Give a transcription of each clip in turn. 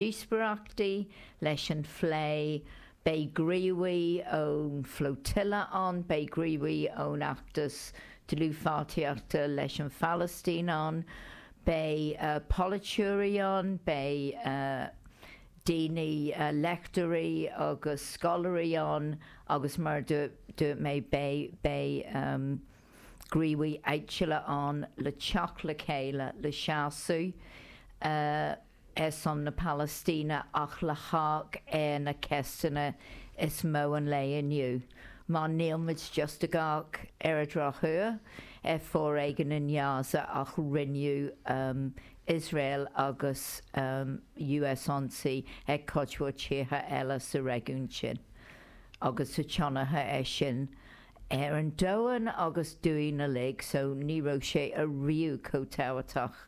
díospóireachtaí leis an phlé. Beidh gníomhaithe ón Flotilla ann, beidh gníomhaithe ón Fheachtas Dlúthpháirtíochta leis an Phalaistín ann, beidh polaiteoirí ann, beidh daoine, léachtóirí agus scoláirí ann agus mar a dúirt mé beidh gníomhaithe áitiúla ann le teacht le chéile, le seasamh. ar son na Palaistíne ach le hamharc ar na ceisteanna is mó an lae inniu mar níl muid just ag amharc ar an drochuair ar foréigean in Gaza ach rinne Iosrael agus US ionsaí ar cuid mhór tíortha eile sa réigiún sin agus tá tionchar aige sin ar an domhan agus dúinn uilig so ní raibh sé ariamh chomh tábhachtach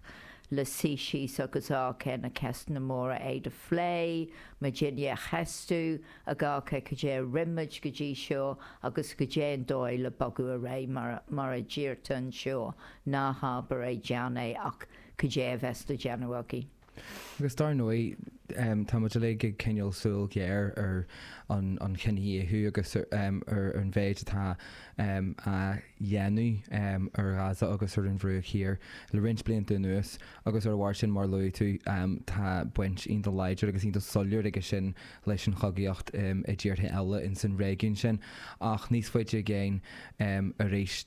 le suí síos agus amharc ar na ceisteanna móra, iad a phlé, maidir leis an cheist seo ag amharc ar cad é a rinne muid go dtí seo agus cad é an dóigh le bogadh ar aghaidh mar, mar a deirtear anseo, ná habair é, déan é ach cad é a bheas le déanamh againn? Agus dar ndóigh, tá muid uilig ag coinneáil súil ghéar ar an chinedhíothú agus ar an mhéid atá á dhéanamh ar Ghaza agus ar an Bhruach Thiar le roinnt blianta anuas agus, ar a bharr sin, mar a luaigh tú, tá baint iontach láidir agus iontach soiléir aige sin leis an chogaíocht i dtíortha eile ins an réigiún sin. Ach níos faide i gcéin arís,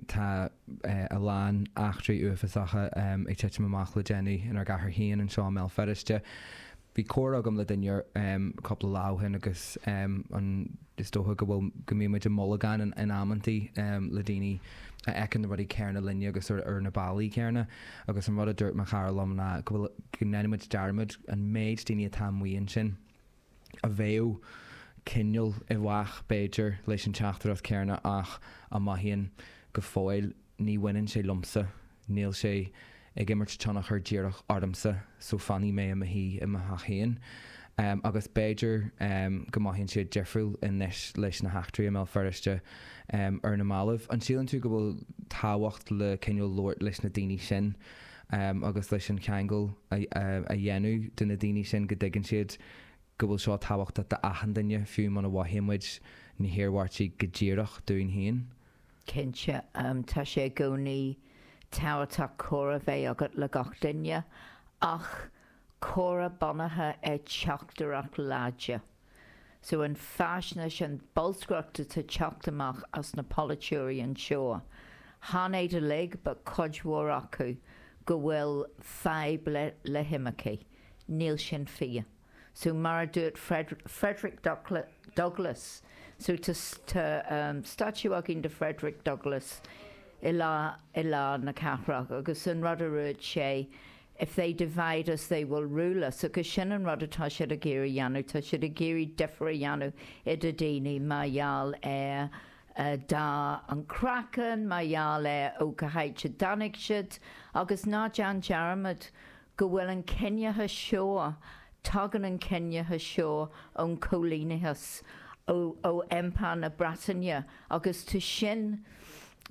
tá. a lán eachtraí uafásacha ag titim amach le déanaí inár gcathair féin anseo i mBéal Feirste. Bhí comhrá agam le duine cúpla lá ó shin agus is dócha go bhfuil, go mbíonn muid i mbolgán in amantaí le daoine a fheiceann na rudaí céanna linne agus ar na bealaí céanna agus an rud a dúirt mo chara liom ná go bhfuil, go ndéanann muid dearmad an méid daoine atá amuigh ansin. a bheadh cineál i bhfách, b'fhéidir, leis an teachtaireacht chéanna ach a mothaíonn go fóill 'ní bhaineann sé liomsa, níl sé ag imirt tionchar díreach ormsa so fanfaidh mé i mo shuí i mo theach féin'. Agus b'fhéidir go mothaíonn siad difriúil anois leis na heachtraí i mBéal Feirste ar na mallaibh. An síleann tú go bhfuil tábhacht le cineál labhairt leis na daoine sin agus leis an cheangal a dhéanamh do na daoine sin go dtuigeann siad go bhfuil seo tábhachtach d'achan duine, fiú muna mhothaíonn muid na hiarmhairtí go díreach dúinn féin. Cinnte, tá sé i gcónaí tábhachtach comhrá a bheith agat le gach duine, ach comhrá bunaithe ar teachtaireacht láidir. So an faisnéis, an bholscaireacht atá teacht amach as na polaiteoirí anseo, chan iad uilig, but cuid mhór acu, go bhfuil fadhb le himircigh, níl sin fíor. So mar a dúirt Frederick Douglass, so tá statue againn de Frederick Douglass i lár na cathrach agus an rud a dúirt sé, If they divide us they will rule us, agus sin an rud atá siad ag iarraidh a dhéanamh, tá siad ag iarraidh difear a dhéanamh idir daoine mar gheall ar dath an chraiceann, mar gheall ar ó cá háit a dtáinig siad, agus ná déan dearmad go bhfuil an ciníochas seo, tagann an ciníochas seo ón choilíneachas, ó Impireacht na Breataine agus tá sin.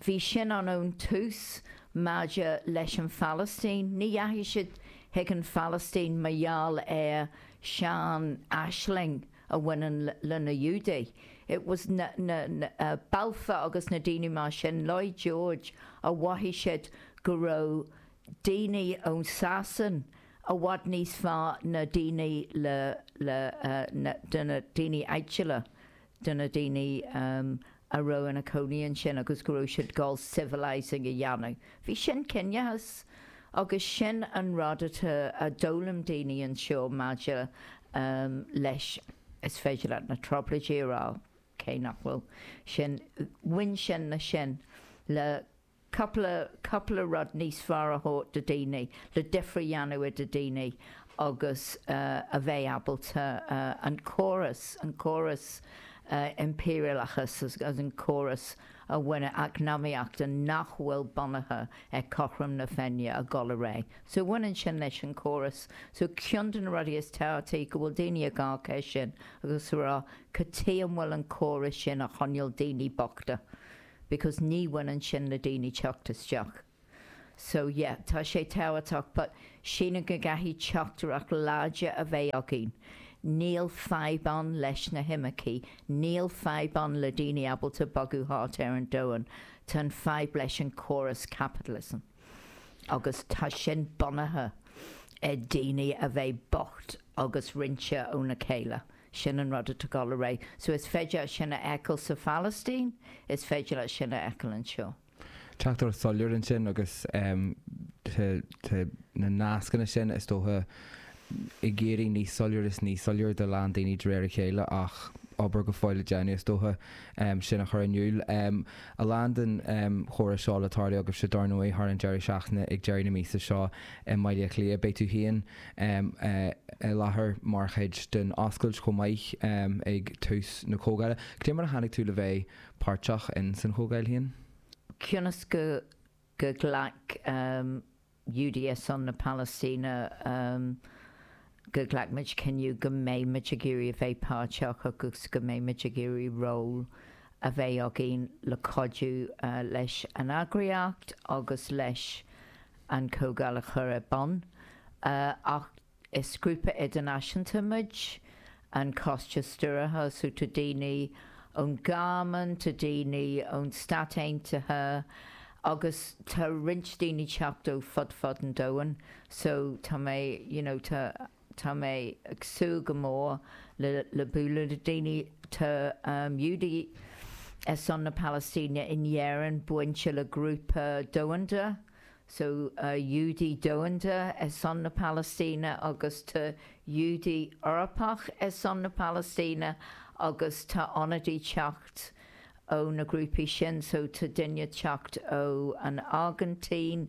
Bhí sin ann ón tús maidir leis an Phalaistín. Ní dheachaigh siad chuig an Phalaistín mar gheall ar shean-aisling a bhaineann leis na Giúdaigh. It was Balfour agus na daoine mar sin, Lloyd George, a mhothaigh siad go raibh daoine ón Sasain i bhfad níos fearr ná daoine le na daoine áitiúla. de na daoine a raibh ina cónaí ansin agus go raibh siad ag dul civilising a dhéanamh. Bhí sin ciníochas agus sin an rud atá a d'fhoghlaim daoine anseo maidir leis, is féidir leat na Trioblóidí a rá, cé nach bhfuil sin, bhain sin leis sin, le cúpla, cúpla rud níos fearr a thabhairt do daoine, le difear a dhéanamh idir daoine agus a bheith ábalta an córas, an córas impiriúlachas agus an córas a bhain eacnamaíochta nach bhfuil bunaithe ar cothrom na féinne a dhul ar aghaidh. So bhaineann sin leis an chóras. So ceann de na rudaí is tábhachtaí go bhfuil daoine ag cur ceist air sin agus a rá cad tuige an bhfuil an córas sin ag coinneáil daoine bochta. because ní bhaineann sin le daoine teacht isteach so yeah tá sé tábhachtach but sílim go gcaithfidh teachtaireacht láidir a bheith againn níl fadhb ann leis na himircigh níl fadhb ann le daoine ábalta bogadh thart ar an domhan tá an fadhb leis an córas capitalism agus tá sin bunaithe ar daoine a bheith bocht agus roinnte óna chéile. Sin an rud atá ag dul ar aghaidh. So is féidir leat sin a fheiceáil sa Phalaistín, is féidir leat sin a fheiceáil anseo. teachtaireacht soiléir ansin agus tá na nascanna sin, is dócha, ag éirí níos soiléire is níos soiléire do a lán daoine de réir a chéile ach obair go fóill le déanamh, is dócha, sin a chur in iúl. A lán den chomhrá seo le tarlú agaibhse, dár ndóigh, thar an deireadh seachtaine ag deireadh na míosa seo i mBaile Átha Cliath. Beidh tú féin i láthair mar chuid den oscailt chomh maith ag tús na comhdhála. Cad é mar a tháinig tú le bheith páirteach ins an chomhdháil féin? Cionn is go ghlac Iúdaigh ar son na Palaistíne go ghlac muid cinneadh go mbeidh muid ag iarraidh a bheith páirteach agus go mbeidh muid ag iarraidh ról a bheith againn le cuidiú leis an eagraíocht agus leis an Chomhdháil a chur ar bun, ach is grúpa idirnáisiúnta muid, an Coiste Stiúrtha, so tá daoine ón Ghearmáin, tá daoine ón Stáit Aontaithe agus tá roinnt daoine teacht ó fud fad an domhain, so tá mé, you know, tá. tá mé ag súil go mór le le bualadh le daoine tá Iúdaigh ar son na Palaistíne in Éirinn bainte le grúpa domhanda so Iúdaigh domhanda ar son na Palaistíne agus tá Iúdaigh Eorpach ar son na Palaistíne agus tá ionadaí teacht ó na grúpaí sin so tá duine teacht ó an Airgintín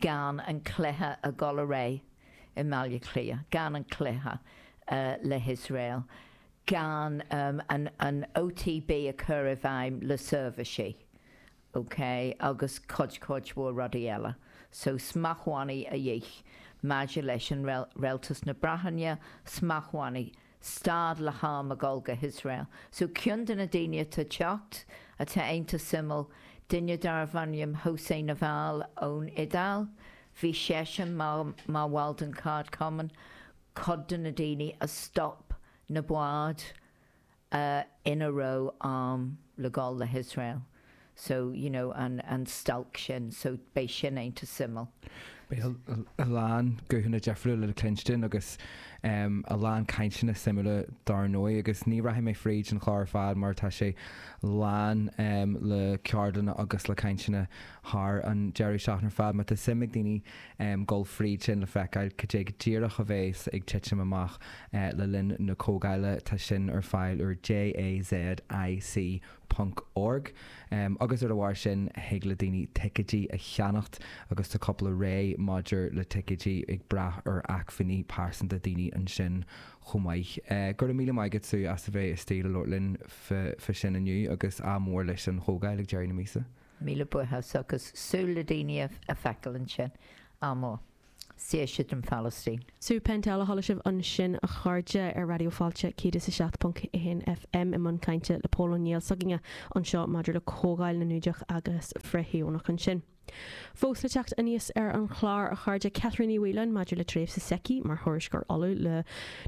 gan an cluiche a dhul ar aghaidh i mBaile Átha Cliath, gan an cluiche le hIosrael, gan an OTB a chur i bhfeidhm le seirbhísí, OK, agus cuid, cuid mhór rudaí eile. So smachtbhannaí a dhíth maidir leis an Rialtas na Breataine, smachtbhannaí. stad le hairm ag dul go hIosrael. So ceann de na daoine atá teacht, atá iontach suimiúil, duine darbh ainm José Nivoi ón Iodáil, bhí seisean, mar bhall den cheardchumann, cuid de na daoine a stop na báid ina raibh airm le dhul le hIosrael. so, you know, an an stailc sin, so beidh sin iontach suimiúil. Beidh a lán guthanna deifriúla le cluinstin agus a lán cainteanna suimiúla dar ndóigh agus ní rachaidh mé fríd an chlár ar fad mar tá sé lán le ceardlanna agus le cainteanna thar an deireadh seachtaine ar fad má tá suim ag daoine dul fríd sin le feiceáil cad é go díreach a bheas ag titim amach le linn na comhdhála. Tá sin ar fáil ar JAZIC. ponc org, agus ar a bharr sin thig le daoine ticéidí a cheannacht agus tá cúpla rogha maidir le ticéidí ag brath ar acmhainní pearsanta daoine ansin chomh maith. Go raibh míle maith agat Sue as a bheith istigh le labhairt linn fá sin inniu agus ádh mór leis an chomhdháil ag deireadh na míosa. Míle buíochas agus súil le daoine a fheiceáil ansin. Ádh mór. Sea, siad an Phalaistín. Sue Pentel a chuala sibh ansin a chairde ar Raidió Fáilte 107.1 FM i mbun cainte le Pól Ó Néill s'againne anseo maidir le Comhdháil na nIúdach agus Frith-Shíonach ansin. Fós le teacht aníos ar an chlár a chairde Catherine Whelan maidir le tréimhse s'aici mar thuairisceoir Uladh le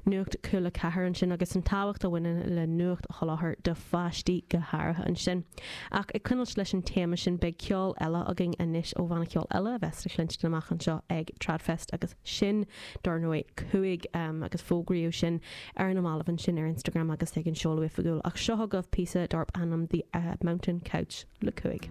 nuacht Cúla 4 ansin agus an tábhacht a bhaineann le nuacht a sholáthar do pháistí go háirithe ansin. Ach ag coinnilt leis an téama sin beidh ceol eile againn anois ó bhanna ceoil eile a bheas le cluinstin amach anseo ag Tradfest agus sin dar ndóigh Cúig agus fógraíodh sin ar na mallaibh ansin ar Instagram agus ag an seoladh oifigiúil ach seo chugaibh píosa darb ainm The Mountain Couch le Cúig.